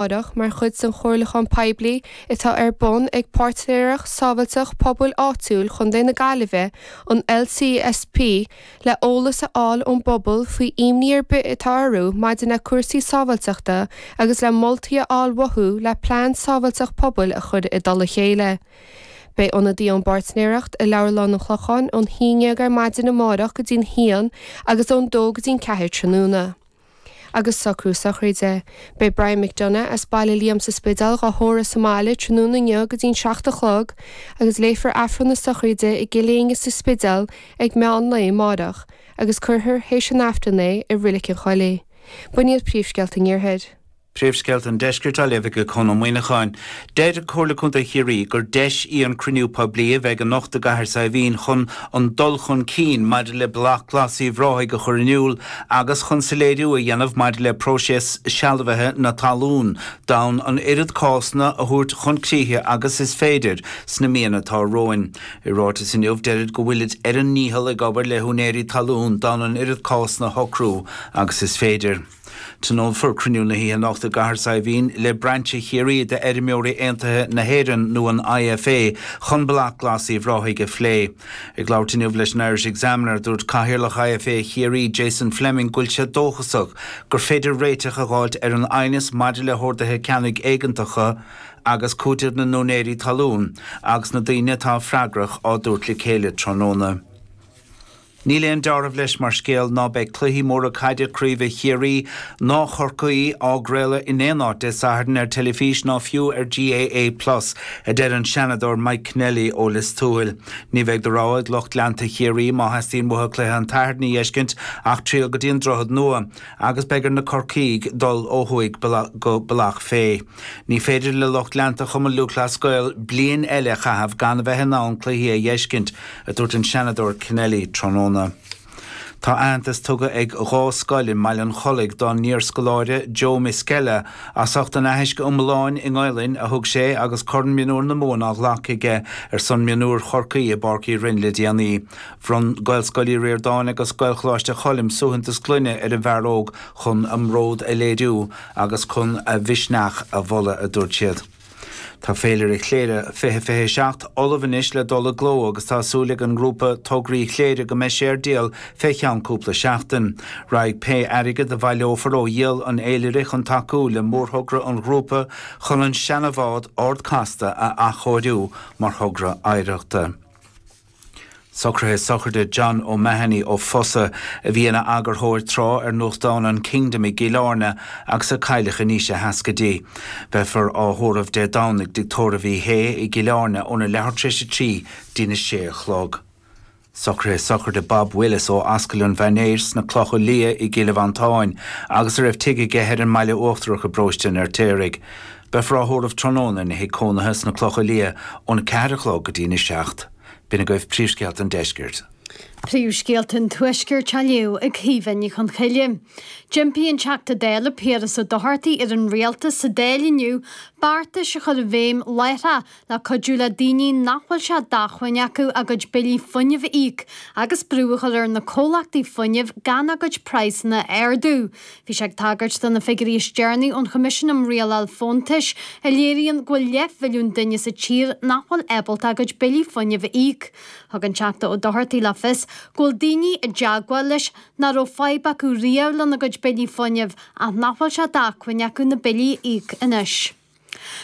Aireach mar chuid den chomhairliúchán poiblí atá ar bun ag Páirtnéireacht Sábháilteacht Pobail Áitiúil Chontae na Gaillimhe, an LCSP, le eolas a fháil ón bpobal faoi imní ar bith atá orthu maidir le cúrsaí sábháilteachta agus le moltaí a fháil uathu le plean sábháilteacht pobail a chur i dtoll a chéile. Beidh ionadaí ón bPáirtnéireacht i Leabharlann an Chlocháin ón haon déag ar maidin amáireach go dtí'n haon agus ón dó go dtí'n ceathair tráthnóna. agus socrú sochraide. Beidh Brian McDonagh as Baile Liam sa Spidéal dhá thórramh sa mbaile tráthnóna inniu go dtí'n seacht a chlog agus léifear Aifreann na sochraide i gCill Éinne sa Spidéal ag meán lae amáireach agus cuirfear théis an Aifrinn é i Roilig an Choilligh. B'in iad príomhscéalta an iarthair. Príomhscéalta an Deiscirt á léamh ag Conn Ó Muíneacháin. Deir Comhairle Contae Chiarraí gur deis í an cruinniú poiblí a bheidh anocht i gCathair Saidhbhín chun an dul chun cinn maidir le Bealach Glas Uíbh Ráthaigh a chur in iúl agus chun soiléiriú a dhéanamh maidir le próiseas sealbhaithe na talún d'fhonn an oiread cásanna a thabhairt chun críche agus is féidir sna míonna atá romhainn. I ráiteas inniu deirid go bhfuilid ar a ndícheall ag obair le húinéirí talún d'fhonn an oiread cásanna a shocrú agus is féidir. Tionólfar cruinniú na hoíche anocht i gCathair Saidhbhín le Brainse Chiarraí d'Fheirmeoirí Aontaithe na hÉireann, nó an IFA, chun Bealach Glas Uíbh Ráthaigh a phlé. Ag labhairt inniu leis an Irish Examiner, dúirt Cathaoirleach IFA Chiarraí, Jason Fleming, go bhfuil sé dóchasach gur féidir réiteach a dh'fháilt ar an aighneas maidir le horduithe ceannaigh éigeantacha agus cúiteamh na n-úinéirí talún agus na daoine atá freagrach á dtabhairt le chéile tráthnóna. Níl aon deáramh leis mar scéal ná beidh cluichí móra caide craoibhe Chiarraí ná Chorcaí á gcraoladh in aon áit Dé Sathairn ar teilifís ná fiú ar GAA Plus, a deir an Seanadóir Mike Kennelly ó Lios Tuathail. Ní bheidh de rogha ag lucht leanta Chiarraí, má theastaíonn uathu cluiche an tSathairn a dh'fheiscint, ach triall go dtí an Droichead Nua agus beidh ar na Corcaígh dul ó thuaidh go Bealach Féich. Ní féidir le lucht leanta Chumann Lúthchleas Gael bliain eile a chaitheamh gan a bheith in ann cluichí a dh'fheiscint, a dúirt an Seanadóir Kennelly tráthnóna. Tá aitheantas tugtha ag dhá scoil i mBaile an Chollaigh dá n-iarscoláire Joe Miskella as ucht an aithisc iomláin i nGaelainn a thug sé agus Corn Mionúr na Mumhan á ghlacadh aige ar son Mionúir Chorcaí i bPáirc Uí Rinn le déanaí. Bhronn Gaelscoil Uí Ríordáin agus Gaelcholáiste Choilm suaitheantas gloine ar an bhfear óg chun a mbród a léiriú. agus chun a mhisneach a mholadh, a dúirt siad. Tá Féilire Chléire 2027 ullamh anois le dul i gcló agus tá súil ag an ngrúpa Tograí Chléire go mbeidh sé ar díol fé cheann cúpla seachtain. Raghaidh pé airgead a bhaileofar ó dhíol an Fhéilire chun tacú le mórthogra an ghrúpa chun an seana-bhád Ard Casta a athchóiriú mar thogra oidhreachta. Socraithe sochraide John O'Mahony ó Fossa, a bhí ina eagarthóir tráth ar nuachtán an Kingdom i gCill Airne agus a cailleadh in aois a sheascaidí. Beifear á thórramh Dé Domhnaigh i dtigh tórraimh Uí Shé i gCill Airne óna leathuair tar éis a trí dtí'n a sé a chlog. Socraithe sochraide Bob Willis ó Ascaill an Mhainéis sna Clocha Liath i gCill Mhantáin agus a raibh tigh aige thoir i mBaile Uachtarach i bParóiste an Fheirtéaraigh. Beifear á thórramh tráthnóna ina thig cónaithe sna Clocha Liath ón 4 a chlog go dtí'n 7. B'in agaibh príomhscéalta an Deiscirt. Príomhscéalta an Tuaiscirt á léamh ag Caoimhe Ní Chonchoille. D'impigh an Teachta Dála Piaras Ó Dochartaigh ar an Rialtas sa Dáil inniu beartais a chur i bhfeidhm láithreach le cuidiú le daoine nach bhfuil sé d'acmhainn acu a gcuid billí fuinnimh a íoc agus brú a chur ar na comhlachtaí fuinnimh gan a gcuid praghsanna a ardú. Bhí sé ag tagairt do na figiúirí is deireanaí ón Choimisiún um Rialáil Fóntais a léiríonn go bhfuil leathmhilliún duine sa tír nach bhfuil ábalta a gcuid billí fuinnimh a íoc. Thug an Teachta Ó Dochartaigh le fios go bhfuil daoine i dteagmháil leis nach raibh fadhb acu riamh lena gcuid billí fuinnimh ach nach bhfuil sé d'acmhainn acu na billí a íoc anois.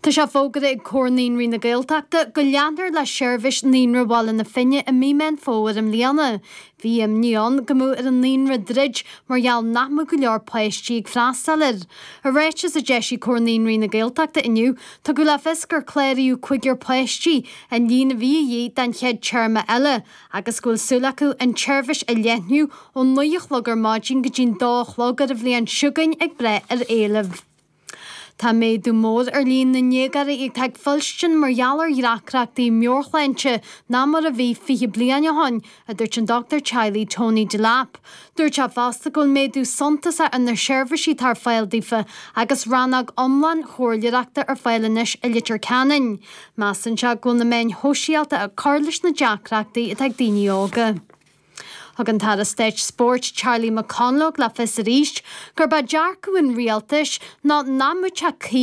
Tá sé fógartha ag Comhar Naíonraí na Gaeltachta go leanfar le seirbhís Naíonra Bhaile na Finne i mí Mheán Fómhair i mbliana. Bhí imní ann go mbeadh ar an naíonra druid mar gheall nach mbeadh go leor páistí ag freastal air. I ráiteas a d'eisigh Comhar Naíonraí na Gaeltachta inniu, tugadh le fios gur cláraíodh cúigear páistí an líon a bhí a dhíth don chéad téarma eile agus go bhfuil súil acu an tseirbhís a leathnú ó naoi a chlog ar maidin go dtí an dó a chlog ar a bhliain chugainn ag brath ar éileamh Tá méadú mór ar líon na ndéagóirí atá ag fuilstin mar gheall ar dheacrachtaí meabhairshláinte ná mar a bhí fiche bliain ó shin, a dúirt an dochtúir teaghlaigh Tony Delap. Dúirt sé fosta go bhfuil méadú suntasach ar na seirbhísí atá ar fáil daofa agus rannóg iomlán comhairleoireachta ar fáil anois i Leitir Ceanainn. Measann sé go bhfuil na meáin shóisialta ag cur leis na deacrachtaí atá ag daoine óga. Thug an tAire Stáit Spóirt Charlie McConalogue le fios arís gurb é dearcadh an Rialtais ná nach mbeadh sé cuí